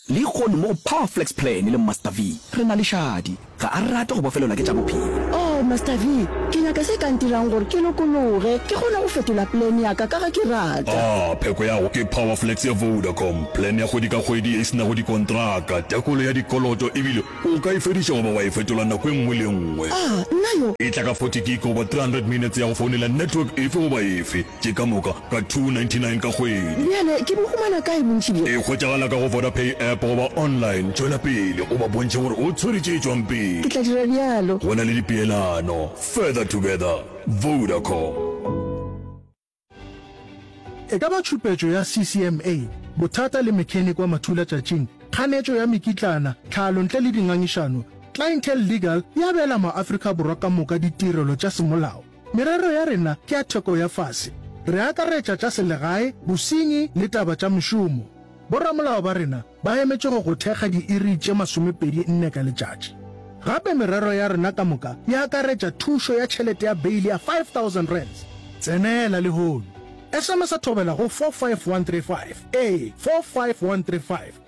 Lehono mo go Power Flex Plan le Master V, re na le šadi. Ga a rate go bofelelwa ke tša bophelo. Oh, Master V, ke nyaka se ka ntirang gore ke lokologe, ke kgone go fetola plan ya ka ka ga ke rata. Ah, pheko ya go ke Power Flex ya Vodacom, plan ya kgwedi ka kgwedi ye e se nago dikontraka, tekolo ya dikoloto ebile o ka e fediša goba wa e fetola nako e nngwe le e nngwe. Ah, nna yo! E tla ka 40 gig goba 300 minutes ya go founela network efe goba efe. Ke ka moka ka 299 ka kgwedi. Bjale ke bo humana kae bontši bjo? E hwetšagala ka go Vodapay app goba online. Tšwela pele o ba bontšhe gore o tshwere tše tšwang pele. Ke tla dira bjalo. Go na le dipeelano. Further together. Vodacom. E ka ba tšhupetšo ya CCMA, bothata le mechanic wa mathula tšatšing, kganetšo ya mekitlana, tlhalo ntle le dingangišano, Clientele Legal e abela maAfrika Borwa ka moka ditirelo tša semolao. Merero ya rena ke ya theko ya fase. Re akaretša tša selegae, bosenyi le taba tša mošomo. Boramolao ba rena ba emetše go go thekga diiri tše masomepedi nne ka letšatši. Gape merero ya rena ka moka e akaretša thušo ya tšhelete ya beile ya R5000. Tsenela lehono. Sms-a thobela go 45135, ee, 45135.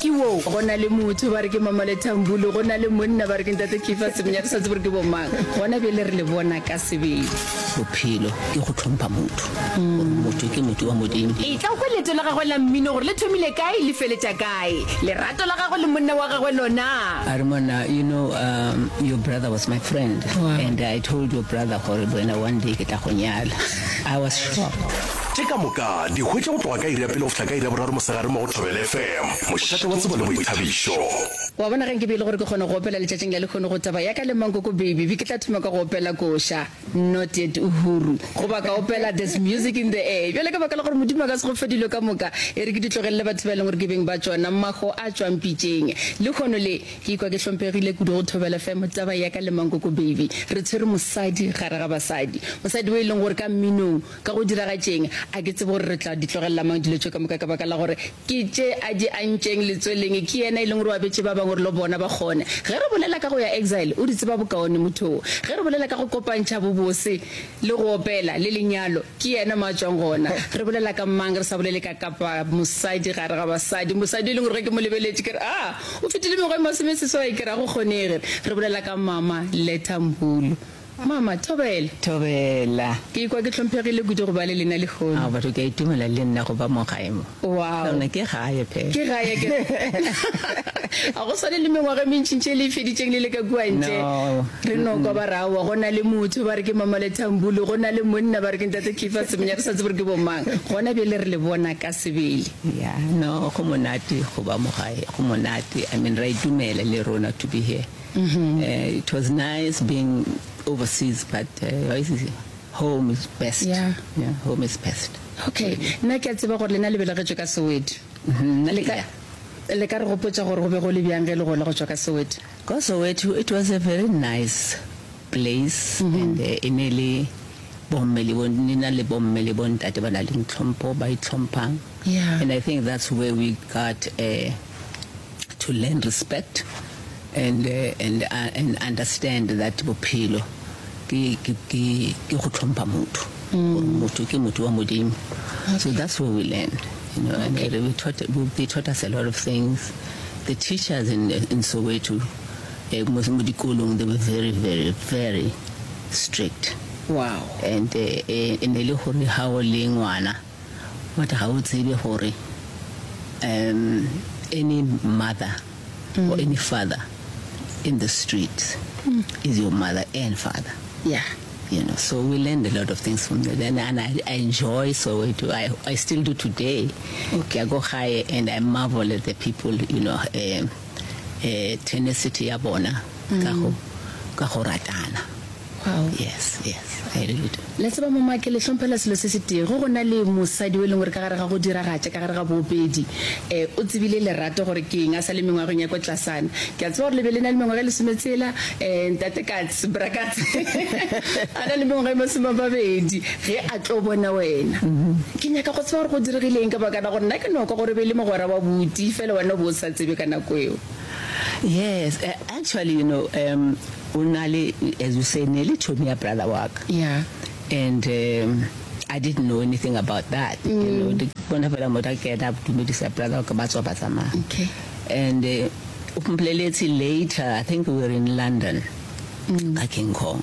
Ke wo. Go na le motho ba re ke Mamole Thambulu, go na le monna ba re ke Ntate Keefer Semenya, re sa tsebe gore ke bomang. Gona bjale re le bona ka sebele. Bophelo ke go hlompha motho, gore motho ke motho wa Modimo. Etla o kwe leeto la gagwe la mmino gore le thomile kae le feletša kae. Lerato la gagwe le monna wa gagwe lona. A re, Monna, you know, um, your brother was my friend, and I told your brother gore le wena one day ke tla go nyala. I was shocked. Tše ka moka di hwetša go tloga ka iri ya pele go fihla ka iri ya boraro mosegare mo go Thobela FM, mošate wa tsebo le boithabišo. Wa bona, ge nka be e le gore ke kgona go opela letšatšing la lehono go taba ya ka le Mankoko Baby, be ke tla thoma ka go opela Koša, Not Yet Uhuru, goba ka opela There's Music In The Air. Bjale ka baka la gore Modimo a ka se go fe dilo ka moka, e re ke di tlogelele batho ba e leng gore ke beng ba tšona, maho a tšwang pitšeng. Lehono le, ke ikwa ke hlomphegile kudu go Thobela FM, taba ya ka le Mankoko Baby. Re tshwere mosadi gare ga basadi, mosadi yo e leng gore ka mminong, Ka go diragatšeng? A ke tsebe gore re tla di tlogelela mang dilo tše ka moka ka baka la gore ke tše a di antšeng letsweleng. Ke yena e leng gore o abetše ba bangwe gore le bona ba kgone. Ge re bolela ka go ya exile, o di tseba bokaone motho wo. Ge re bolela ka go kopantšha bobose le go opela le lenyalo, ke yena mo a tšwang gona. Re bolela ka mang re sa bolele ka kapa mosadi gare ga basadi, mosadi e leng gore ge ke mo lebeletše ke re, Aa, o fetile mengwaga e masomeseswai, ke re a go kgonege. Re bolela ka mama Letta Mbulu. Mama, Thobela! Thobela! Ke ikwa ke hlomphegile kudu go ba le lena lehono. Ao, batho ke a itumela le nna go ba mo gae mo. Wow! Lona ke gae phela. Ke gae ke. A go swane le mengwaga e mentšintši e le e feditšeng le le ka kua ntle. No. Re no kwa ba re aowa go na le motho ba re ke Mama Lethambulu, go na le monna ba re ke Ntate Keefer Semenya, re sa tsebe gore ke bomang. Gona bjale re le bona ka sebele. Yeah, no, go monate go ba mo gae. Go monate. I mean, re a itumela le rona to be here. It was nice being overseas but uh, home is best yeah. Yeah, home is best okay nna ke a tseba gore lena le belegetšwe ka soweto mm-hmm. le ka le ka re gopotsa gore go be go le bjang ge le gola go tšwa ka soweto ka soweto it was a very nice place and e ne le bomme le bo nina le bomme le bontate ba na le ntlhompho ba itlhomphang yeah. and i think that's where we got uh, to learn respect and uh, and uh, and understand that bophelo ke ke ke ke go tlhompha motho mm. motho ke motho wa modimo okay. so that's where we learned you know okay. and uh, we taught we, they taught us a lot of things the teachers in in Soweto Mo mo dikolong they were very very very strict. Wow. And e e ne le gore ha o le ngwana but ga o tsebe gore um any mother or any father in the streets is your mother and father. Yeah. You know, so we learned a lot of things from there. Then and I, I enjoy Soweto. I, I still do today. Ke ya ko gae and I marvel at the people, you know. Um eh, tenacity ya bona ka go ka go ratana Wow. yes yes i really do le tseba mama ke le hlomphela selo se se tee go go na le mosadi o e leng gore ka gare ga go diragatša ka gare ga boopedi um o tsebile lerato gore ke eng a sa le mengwageng ya ko tlasana ke a tseba gore le be le na le mengwaga e lesome tsela um ntate kats brakats a na le mengwaga e masome a mabedi ge a tlo bona wena ke nyaka go tseba gore go diregile eng ka bakana gore nna ke noko gore be le mogwera wa buti fela wena o bo o sa tsebe ka nako eo. Yes, eh, actually you know um o na le as you say ne le thomi ya brother wa ka. Yeah. And um I didn't know anything about that. Mm. You know, di bona fela motho a kena a dumedisa brother wa ka ba tswa ba tsamaya. Okay. And uh, o mpoleletse later, I think we were in London. Mm. Ka King Kong.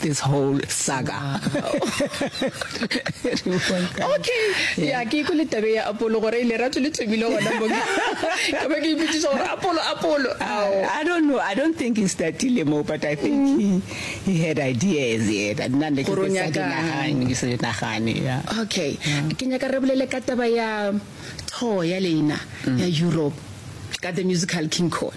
this whole saga okay ya ke ikwe le tabe ya apolo gore ile ratso le thomile gona mo ka ba ke iputsiša gore apolo apolo i don't know i don't think he startile mo but i think mm. he, he had ideas yeah that nna ne ke sa dinagane ke sa dinagane yeah okay ke nyaka re bolele ka taba ya tour ya leina mm. ya europe ka the musical king cone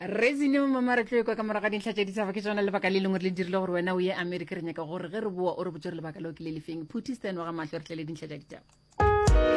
rezine mama re tlo ekwa ka morago ga dintlha tša ditshaba ke tsona lebaka le lengwe re le dirile gore wena o ye amerika re nyaka gore ge re boa o re botse gore lebaka leo ke le lefeng phuthi stan wa ga mahlo re tle le dintlha tša ditaba